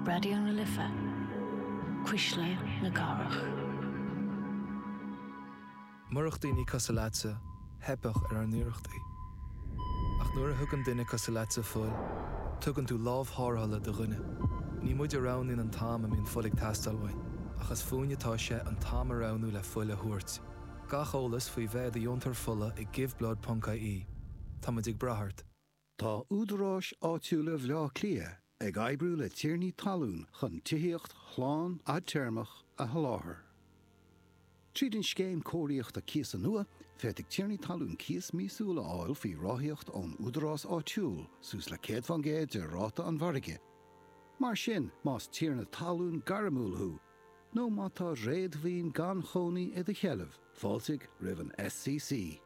Raidió na Life, Cuisle na Cathrach. Murach daoine cosúil leatsa, theipfeadh ar ár n-iarrachtaí. Ach nuair a thugann duine cosúil leatsa fuil, tugann tú lámh thárrthála do dhuine. Ní muid a roghnaíonn an t-am a mbíonn fuil ag teastáil uainn, ach is fúinne atá sé an t-am a roghnú le fuil a thabhairt. Gach eolas faoi bheith i do dheontóir fola ag Giveblood ponc ie Táimid ag brath ort. Tá údaráis áitiúla Bhaile Átha Cliath ag oibriú le tiarnaí talún chun tithíocht shlán fhadtéarmach a sholáthar. Tríd an Scéim Cóiríochta Cíosa nua, féadfaidh tiarnaí talún cíos míosúil a fháil faoi ráthaíocht ón údarás áitiúil suas le 100 fán gcéad de ráta an mhargaidh. Mar sin, más tiarna talún gairmiúil thú nó má tá réadmhaoin gan chónaí i do sheilbh, fáiltigh roimh an SCC.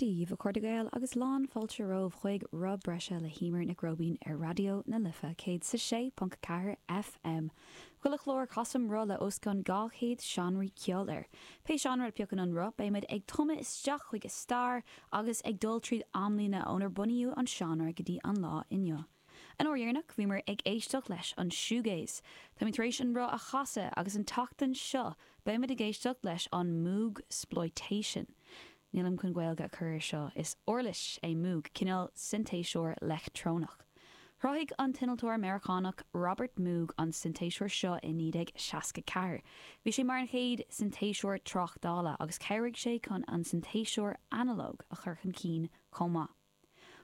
Daoibh, a chairde Gael agus lán fáilte romhaibh chuig Rotha Breise le hEimear Nic Róibín ar Raidió na Life 106.4 FM. Chuile chlár casaim roth le os cionn 200 seánraí ceoil air. Pé seánra a phiocann an roth beidh muid ag tumadh isteach chuig a stair agus ag dul tríd amlíne ónar bunaíodh an seánra go dtí an lá inniu. An uair dheireanach bhíomar ag éisteacht leis an shoegaze. Táimid tar éis an roth a chasadh agus an tseachtain seo beimid ag éisteacht leis an moogsploitation. Nílim chun Gaeilge a chur air seo, is uirlis é moog, cineál sintéiseoir leictreonach. Chruthaigh an t-innealtóir Meiriceánach Robert Moog an sintéiseoir seo i 1964. Bhí sé mar an chéad sintéiseoir tráchtála agus chabhraigh sé chun an sintéiseoir analóg a chur chun cinn chomh maith.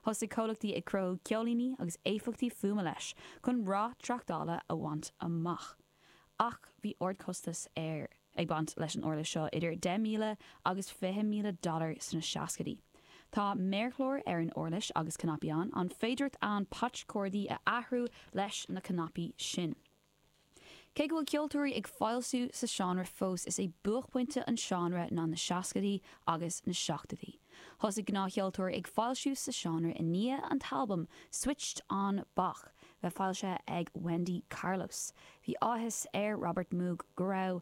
Thosaigh comhlachtaí ag cruthú ceolíní agus éifeachtaí fuaime leis chun rath tráchtála a bhaint amach. Ach bhí ardchostas ar ag baint leis an uirlis seo, idir 10,000 agus 20,000 dollar sna seascaidí. Tá méarchlár ar an uirlis agus cnaipí ann, an féidireacht ann patch cordaí a athrú leis na cnaipí sin. Cé go bhfuil ceoltóirí ag foilsiú sa seánra fós, is é buaicphointe an seánra ná na seascaidí agus na seachtóidí. Thosaigh gnáthcheoltóirí ag foilsiú sa seánra i ndiaidh an t-albam Switched On Bach bheith foilsithe ag Wendy Carlos. Bhí áthas ar Robert Moog go raibh